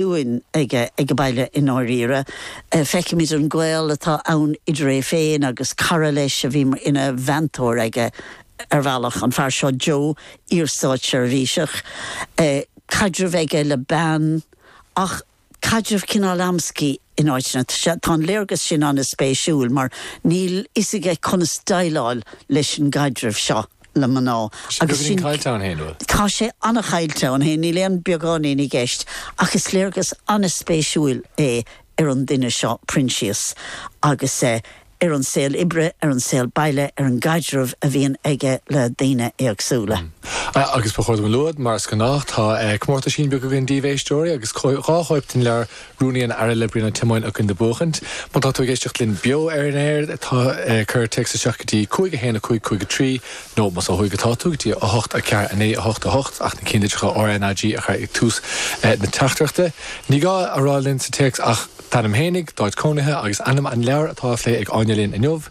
dúinn aige ag baile i ndáiríre. Feicimid an gaol atá ann idir é féin agus cara leis a bhí ina mheantóir aige ar bhealach, an fear seo Joe, iarstátseirbhíseach. Caidreamh aige le bean ach caidreamh cineál amscaí in áiteanna. Tá an léargas sin an-spéisiúil mar níl fhios aige conas déileáil leis an gcaidreamh seo. na mná. Tá sé beagáinín caillte ann féin, bhuel. Tá sé an-chaillte ann féin, níl aon beagáinín i gceist, ach is léargas an-spéisiúil é ar an duine seo Proinsias agus ar an saol oibre, ar an saol baile, ar an gcaidreamh a bhíonn aige le daoine éagsúla. Agus ba chóir dom a lua, mar is gnách, tá comórtaisín beag againn daoibh, a éisteoirí, agus dhá chóip den leabhar Rúnaí an Aire le Brian Ó Tiomáin againn le buachaint. Má tá tú ag éisteacht linn beo ar an aer, tá, cuir téacs isteach go dtí 5 1 5 5 3 nó, más ó thuaidh atá tú, go dtí 8 4 9 8 8, ach na cinnlitreacha RnaG a chur ag tús na teachtaireachta. Ní gá a rá linn sa téacs ach d'ainm fhéinig, d'áit cónaithe agus ainm an leabhair atá á phlé ag Áine linn inniu.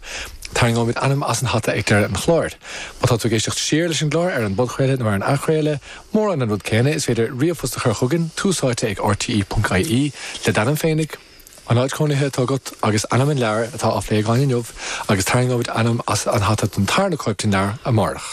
Tarraingeoimid ainm as an hata ag deireadh an chláir. Má tá tú ag éisteacht siar leis an gclár ar an bpodchraoladh nó ar an athchraoladh, Mórán an rud céanna, is féidir ríomhphost a chur chugainn, tús áite ag rte.ie, le d'ainm féinig, an áit chónaithe atá agat agus ainm an leabhair atá á phlé againn inniu agus tarraingeoimid ainm as an hata don tarna cóip den leabhar amárach.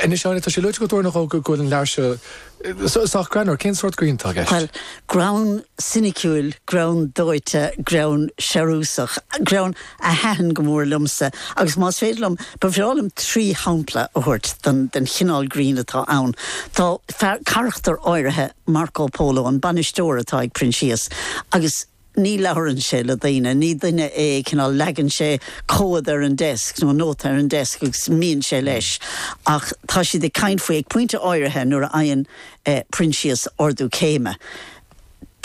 Anois Áine, tá sé luaite agat uair nó dhó go bhfuil an leabhar seo sách greannmhar, cén sórt grinn atá i gceist? Bhuel, greann soiniciúil, greann dóite, greann searbhasach, greann. a thaitin go mór liomsa agus más féidir liom, ba bhreá liom trí shampla a thabhairt den chineál grinn atá ann. Tá fear, carachtar áirithe, Marco Polo, an bainisteoir atá ag Proinsias, agus ní labhrann sé le daoine, ní duine é, cineál, leagann sé comhad ar an desk nó nóta ar an desk agus imíonn sé leis ach tá siad ag caint faoi ag pointe áirithe nuair a fhaigheann Proinsias ardú céime.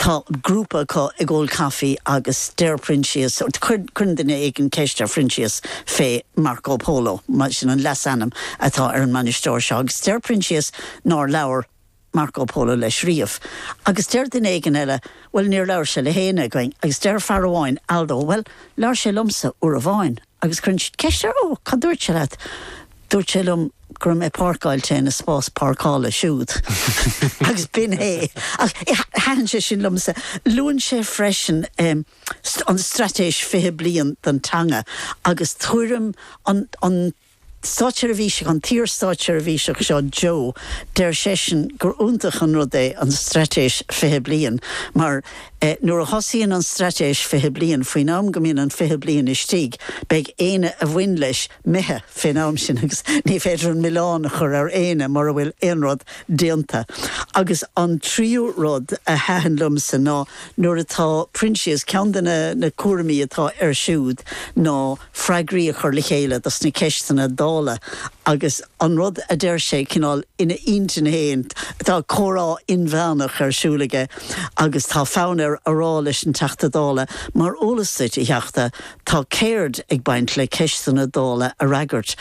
Tá grúpa acu ag ól caife agus deir Proinsias, cuireann duine éigin ceist ar Phroinsias fé Marco Polo, sin an leasainm atá ar an mbainisteoir seo, agus deir Proinsias nár labhair Marco Polo leis riamh. Agus deir duine éigin eile, bhuel, níor labhair sé le héinne againn, agus deir fear amháin, Aldo, bhuel, labhair sé liomsa uair amháin. Agus cuireann siad ceist air, 'Ó, cad dúirt sé leat? 'Dúirt sé liom go raibh mé páirceáilte ina spás páirceála siúd. Agus b'in é. Ach thaitin sé sin liomsa. Luann sé freisin an Straitéis Fiche Bliain don teanga agus tuairim an. Státseirbhíseach, an t-iar-státseirbhíseach seo Joe, deir seisean gur iontach an rud é an Straitéis 20 Bliain mar nuair a thosaíonn an Straitéis 20 Bliain, faoin am go mbíonn an 20 bliain istigh, beidh éinne a bhain leis imithe fén am sin agus ní féidir an milleán a chur ar éinne mura bhfuil aon rud déanta. Agus an tríú rud a thaitin liomsa ná nuair atá Proinsias, ceann de na cúraimí atá air siúd ná, freagraí a chur le chéile dos na ceisteanna Dála agus an rud a deir sé cineál ina intinn féin, tá comhrá inmheánach ar siúl aige agus tá fonn air a rá leis an Teachta Dála, mar eolas duit, a Theachta, tá ceird ag baint le ceisteanna Dála a fhreagairt.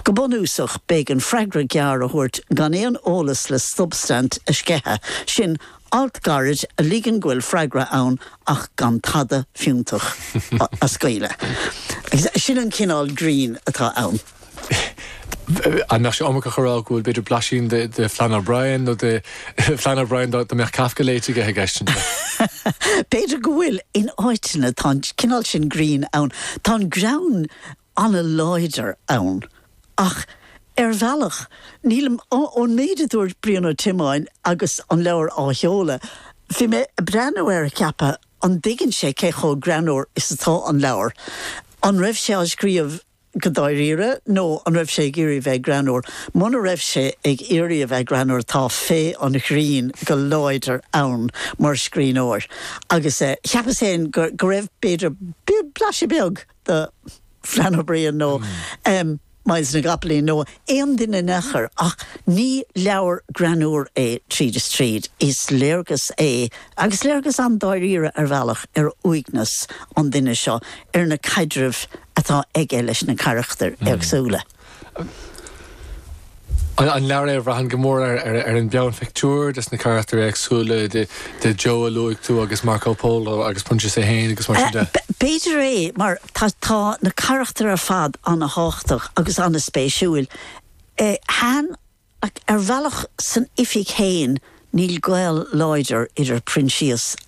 Go bunúsach, beidh an freagra gearr a thabhairt gan aon eolas le substaint a sceitheadh, sin alt gairid a ligeann go bhfuil freagra ann ach gan tada fiúntach a scaoileadh. Agus sin an cineál grinn atá ann. An mbeadh sé iomarcach a rá go bhfuil b'fhéidir blaisín de Flann O'Brien nó de Flann O'Brien dá mbeadh Kafka léite aige i gceist anseo? B'fhéidir go bhfuil. In áiteanna tá an cineál sin grinn ann. Tá an greann. an-láidir ann ach ar bhealach níl, ón méid a dúirt Brian Ó Tiomáin agus an leabhar á sheoladh, bhí mé ag breathnú air ag ceapadh an dtuigeann sé cé chomh greannúr is atá an leabhar? An raibh sé á scríobh go dáiríre nó an raibh sé ag iarraidh a bheith greannúr? Muna raibh sé ag iarraidh a bheith greannúr tá féith an ghrinn go láidir ann mar scríbhneoir agus cheapas fhéin go raibh b'fhéidir blaiseadh beag, de Flann O'Brien nó Myles na gCopaleen nó aon duine in aon chor ach ní leabhar greannúr é tríd is tríd, is léargas é, agus léargas an-dáiríre ar bhealach, ar uaigneas an duine seo, ar na caidrimh atá aige leis na carachtair éagsúla. An leabhar é a bhraitheann go mór ar an bpeannphictiúr des na carachtair éagsúla de Joe a luaigh tú agus Marco Polo agus Proinsias a hAon agus mar sin de. B'fhéidir é mar tá, tá na carachtair ar fad an-thábhachtach agus an-spéisiúil. Sea, ar bhealach san oifig fhéin níl gaol láidir idir Proinsias agus.